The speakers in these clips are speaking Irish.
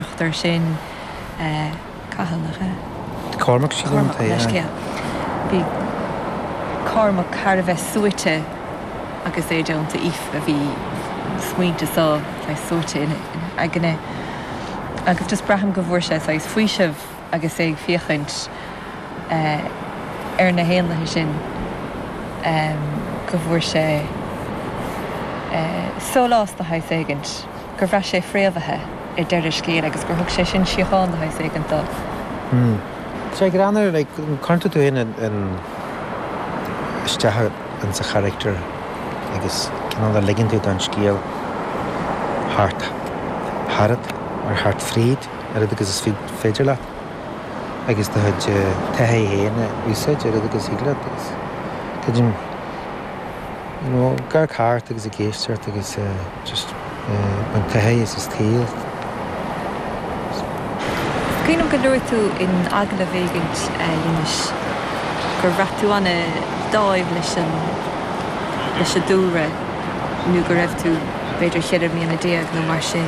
Nochtar sin Cathal le scéal. Cormac sa gcontae, aye. Bhí Cormac thar a bheith suaite agus é déanta aoife. Bhí smaointe sáith, saghas, suaite ina aigne. Agus just braithim go bhfuair sé saghas faoiseamh. agus é ag féachaint ar na héanlaithe sin go bhfuair sé sólás de shaghas éigin, gur bhraith sé fréamhaithe ar deireadh scéil agus gur thug sé sin síocháin de shaghas éigin dó. Sea, ag breathnú ar, like, cuireann tú tú fhéin in, in, isteach in sa character agus cineál ligeann tú don scéal thart tharat, or thart fríd. oiread agus is féidir leat agus do chuid taithí féin a úsáid oiread agus thig leat agus cuid an you know gar ceart agus i gceist ort agus just an taithí is is taobh. Cuimhním gur luaigh tú in agallamh éigin leis gur bhraith tú an-dáimh leis an leis an dúlra nó go raibh tú b'fhéidir cheithre bliana déag nó mar sin,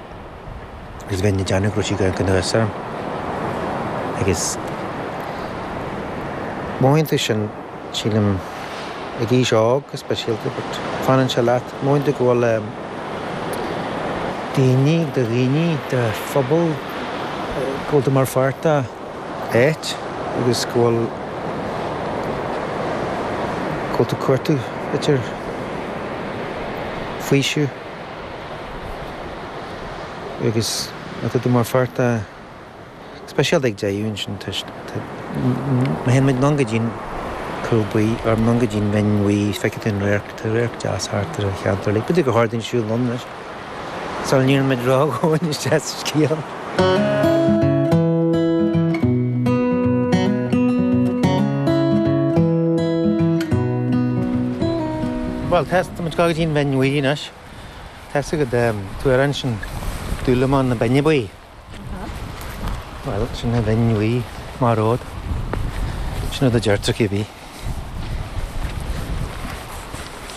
agus a bheith ina dearna go raibh sí go gnaíúil orm. Agus moments de sin, sílim, ag aois óg go speisialta, but fanann sé leat, moments de go bhfuil daoine, do dhaoine, do phobal, go bhfuil tú mar pháirt de áit agus go bhfuil, go bhfuil tú ag cuartú, idir faoiseamh. Agus tá tú mar pháirt de speisialta ag deighadh ansin toisc tá má théann muid anonn go dtí an Cúil Buí, or anonn go dtí an Bhinn Bhuí, feicfidh tú an radharc, tá radharc deas thart ar an cheantar uilig. B'fhéidir gur chóir dúinn siúl anonn anois, sula n-éiríonn muid ródhomhain isteach sa scéal. Bhuel, tá, tá muid ag gabháil go dtí an Bhinn Bhuí anois. Tá a fhios agat an t-amhrán sin Dúlamán na Binne Buí. Aha. Bhuel, sin an Bhinn Bhuí, Má Road. Sin rud a deirtear cibé.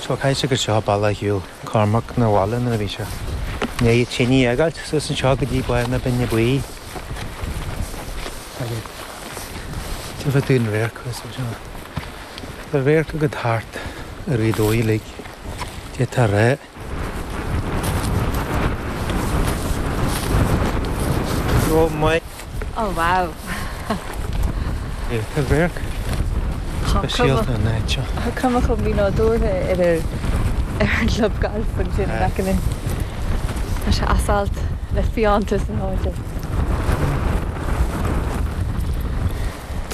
Okay so agus seo an bealach a shiúil Cormac na bhaile nuair a bhí sé i ndiaidh tine a fhágáilt suas anseo go dtí Baile na Binne Buí agus feicfidh tú an radharc thuas anseo. Tá radharc agat thart ar Ghaoth Dobhair uilig, d'fhéadfá a rá. Rom mé. Oh wow. Tá radharc speisialta ón áit seo. Tá cuma chomh mínádúrtha ar an chlub gailf ansin in aice linn. Tá sé as alt le fiántas na háite.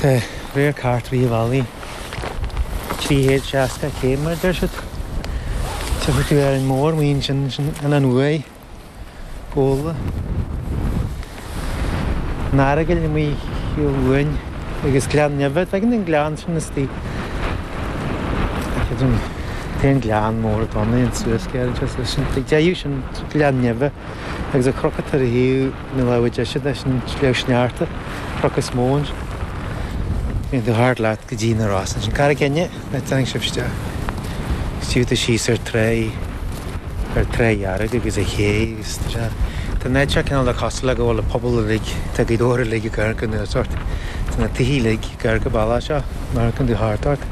Tá radharc thart Uíbh Fhailí. Trí chéad seasca céim, mar a deir siad. Tchífidh tú Árainn Mhór amuigh ansin ansin Uaigh, Gabhla. An Earagail amuigh thiar uainn agus Gleann Nimhe. Tagann an gleann sin istigh. Tagann an gleann mór domhain suas gearr ansin. Tá sin taobh sin Gleann Nimhe agus an cnoc atá ar thaobh. Na láimhe deise leis sin Sliabh Sneachta cnoc is mó ann. Bíonn tú thart leat go dtí na Rosa ansin. Carraig Fhinne a dtáinig sibh isteach. Tchí tú síos ar Toraí, an Trá Dhearg agus an ché agus tá sé, tá an áit seo cineál de cosúil le go bhfuil an pobal uilig, tá Gaoth Dobhair uilig ag amharc anuas ort. Tá na tithe uilig ag amharc an bealach seo, amharcann tú thart ort.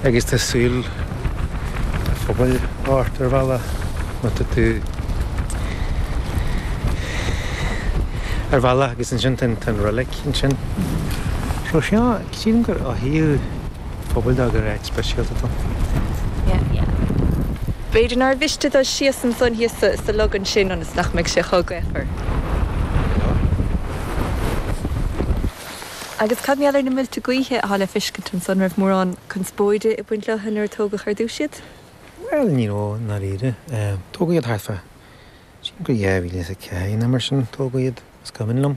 Agus tá súil an phobail ort ar bhealach má tá tú ar bhealach agus ansin tá an roilig ansin. So seo, sílim gur mhothaigh an pobal dó gur áit speisialta dó. Yeah, yeah. B'fhéidir nár mhiste dul síos ansan thíos sa, sa log ansin ionas nach mbeidh sé chomh gaofar. Agus cad mar gheall ar na muilte gaoithe atá le fiscint ansan? An raibh mórán conspóide ag baint leo nuair a tógadh ar dtús iad? Bhuel, ní raibh i ndáiríre. Tógadh iad thart fá, sílim 2004 nó mar sin, tógadh iad, is cuimhin liom.